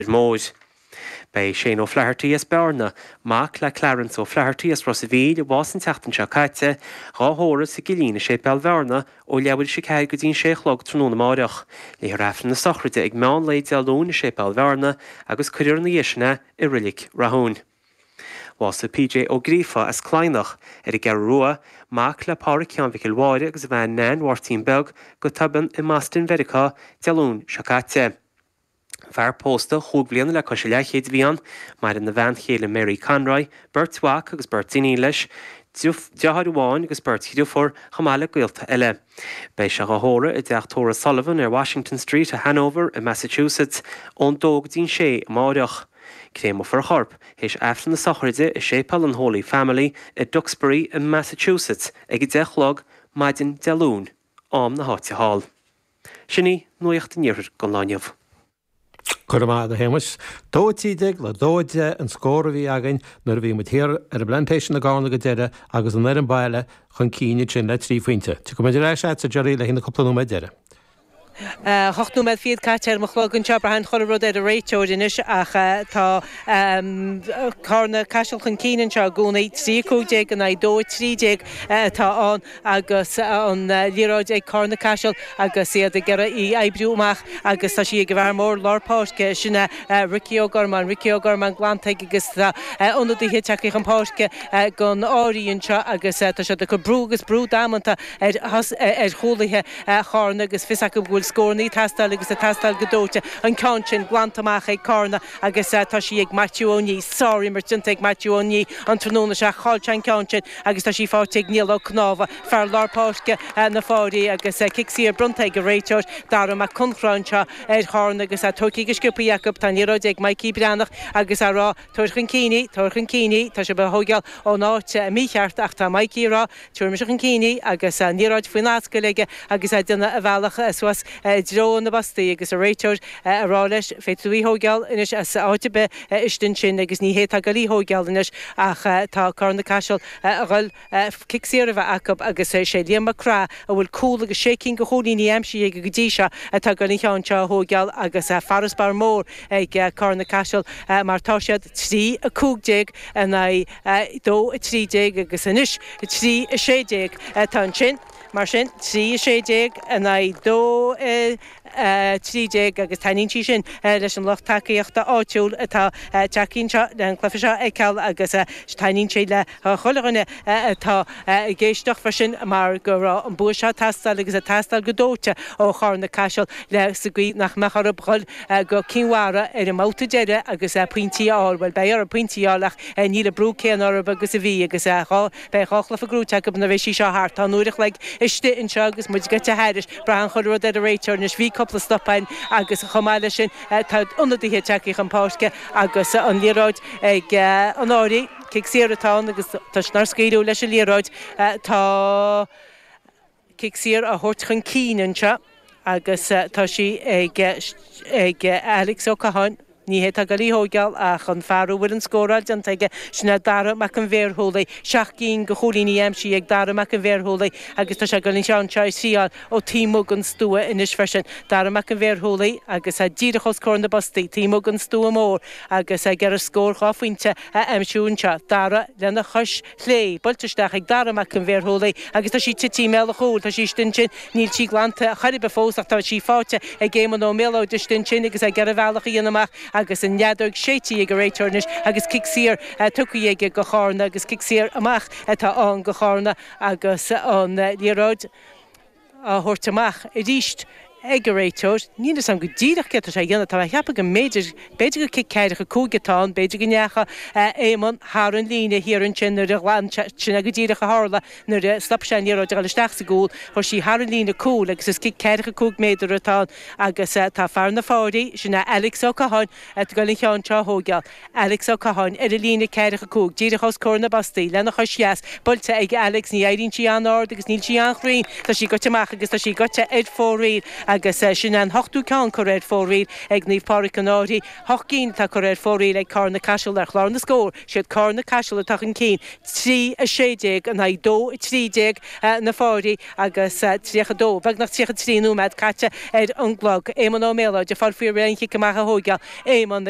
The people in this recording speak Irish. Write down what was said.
Ar ndóigh, beidh Shane O'Flaherty as Bearna, mac le Clarence O'Flaherty as Ros a' Mhíl, a bhásaigh an tseachtain seo caite, dhá thórramh sa gCillín i Séipéal Bhearna ó leathuair théis a ceathair go dtí an sé a chlog tráthnóna amárach. Léifear Aifreann na Sochraide ag meán lae Dé Luain i Séipéal Bhearna agus cuirfear ina dhiaidh sin é i Reilig Rathúin. Bhásaigh PJ Ó Gríofa as Cladhnach ar an gCeathrú Rua, mac le Pádhraic Sheáin Mhicil Mháire agus a bhean Neain Mháirtín Beag, go tobann i mBoston Mheiriceá Dé Luain seo caite. Fear pósta chúig bhliana le cois a leathchéid a bhí ann. Maireann a bhean chéile Mary Conroy, beirt mhac agus beirt iníon leis, deartháir amháin agus beirt dhriofúr, chomh maith le gaolta eile. Beidh sé á thórramh i dteach tórraimh Sullivan ar Washington Street i Hanover i Massachusetts ón dó go dtí'n sé amáireach. Créamofar a chorp, théis aifreann na sochraide, i Séipéal an Holy Family i Duxbury i Massachusetts ag a deich a chlog maidin Dé Luain, am na háite thall. Sin í nuacht an Iarthair don lá inniu. Go raibh maith agat, a Shéamais. Dó a trí déag le dó a deich an scór a bhí againn nuair a bhí muid thiar ar an bPlantation i gCarna go deireadh agus an fhoireann baile chun cinn ansin le trí phointe. Tiocfaidh muid ar ais a'dsa Gerry le haghaidh na cúpla nóiméad deiridh. Ocht nóiméad fichead caite ar mo chlog anseo. Braitheann chuile rud ar an réiteoir anois ach tá Carna Caiseal chun cinn anseo i gcónaí. Trí a cúig déag in aghaidh dó a trí déag atá ann. agus an liathróid ag Carna Caiseal agus iad ag iarraidh í a oibriú amach agus tá sí ag an bhfear mór lár páirce, sin é Ricky Ó Gormáin. Ricky Ó Gormáin glanta aige agus tá ionadaithe ag teacht chun páirce don Fhairche anseo agus tá siad ag cur brú agus brú damanta ar ar chúlaithe Charna agus fios acu go bhfuil scórannaí ag tastáil agus ag tastáil go dóite. An ceann sin glanta amach ag Carna agus tá sí ag Maitiú Ó Nídh. Sár-imirt déanta ag Maitiú Ó Nídh an tráthnóna seo ach chaill sé an ceann sin. agus tá sí faighte ag Niall Ó Cnámha, fear lár páirce na Fairche, agus cic saor bronnta ag an réiteoir, Darragh Mac Conchrá, anseo ar Charna agus é tóigthí go sciopthaí acu. Tá an liathróid ag Maidhcí Breathnach agus a' rá, Tabhair chun cinn í, tabhair chun cinn í. Tá sibh á thóigeáil ón áit mícheart ach tá Maidhcí a' rá, Tabharfaidh mise chun cinn í, agus an liathróid faoin ascaill aige agus a' déanamh a bhealach suas i dtreo na bpostaí agus a' réiteoir a' rá leis, Féadfaidh tú í thóigeáil anois as áit ar bith. istigh ansin agus ní hé atá goil í a thóigeáil anois ach tá Carna Caiseal a dhul cic saor a bheith acu agus sé Liam Mac Craith a bhfuil cúl agus sé cinn go chúilíní aimsithe aige go dtí seo atá goil an ceann seo a thóigeáil agus farasbarr mór ag Carna Caiseal mar tá siad 3 15 in aghaidh 2 13 agus anois 3 16 tá ansin. Mar sin, 3, 16 in aghaidh 2, 13, agus taitníonn sí sin leis an lucht tacaíochta áitiúil atá ag teacht anseo le an cluiche seo a fheiceáil agus taitníonn sé le chuile dhuine atá ag éisteacht freisin mar go raibh an bua seo ag teastáil agus ag teastáil go dóite ó Charna-Caiseal le sa gcaoi nach mbeadh orthu dhul go Cinn Mhara ar an mbabhta deiridh agus pointí a fháil. Bhuel, beidh orthu pointí a fháil ach níl an brú céanna orthu agus a bhí agus dhá Beidh dhá chluiche gnóite acu nuair a bheidh sí seo thart. Tá an uair a chloig istigh anseo agus muid gaibhte thairis. Braitheann chuile rud ar an réiteoir anois. Bhí cúpla stop ann agus chomh maith leis sin tá ionadaithe ag teacht chun páirce agus an liathróid ag an Fhairche. Cic saor atá ann agus toisc nár scaoileadh leis an liathróid tá Cic saor á thabhairt chun cinn anseo agus tá sí ag Alex Ó Catháin. Ní hé atá ag goil á thóigeáil ach an fear a bhfuil an scóráil déanta aige, sin é Dara Mac an Bhearshúiligh. Seacht gcinn go chúilíní aimsithe ag Dara Mac an Bhearshúiligh agus tá sé ag dul an ceann seo a thriáil ó taobh amuigh den stua anois freisin. Dara Mac an Bhearshúiligh agus díreach os comhair na bpostaí, taobh amuigh den stua mór agus ag iarraidh scór dhá phointe a aimsiú anseo. Dara lena chois. chlé, buailte isteach ag Dara Mac an Bhearshúiligh agus tá sí tite i mbéal a chúil, tá sí istigh ansin, níl sí glanta chor ar bith fós ach tá sí faighte ag Éamonn Ó Méalóid istigh ansin agus é ag iarraidh a bhealach a dhéanamh amach agus an fheadóg séidte ag an réiteoir anois agus cic saor tugtha aige go Charna agus cic saor amach atá ann go Charna agus an liathróid á thabhairt amach arís ag an réiteoir. Níl 'fhios a'm go díreach céard tá sé a dhéanamh, tá mé a cheapadh go mb'fhéidir, b'fhéidir gur cic ceathracha cúig atá ann, b'fhéidir go ndeachaigh Éamonn thar an líne thiar ansin nuair a ghlan sé, sin é go díreach a tharla nuair a stop sé an liathróid a dhul isteach sa gcúl, chuir sí thar an líne cúil agus is cic ceathracha cúig méadar atá ann agus tá fear na Fairche, sin é Alex Ó Catháin, a' ghoil an cheann seo a thóigeáil. Alex Ó Catháin, ar an líne 45, díreach os comhair na bpostaí, lena chois dheas buailte ag Alex. Ní éiríonn sí an-ard agus níl sí an-chruinn. Tá sí goite amach agus tá sí goite ar fóraoil. Agus sin é an hochtú ceann curtha ar fóraoil ag Naomh Pádraic an Fhairche. Hocht gcinn atá curtha ar fóraoil ag Carna-Caiseal ar chlár na scór. Siad Carna-Caiseal atá chun cinn, 3, 16, in aghaidh 2, 13, na Fairche agus 32, beagnach 33 nóiméad caite ar an gclog. Éamonn Ó Méalóid ag fáil faoi réir an cic amach a thóigeáil Éamonn.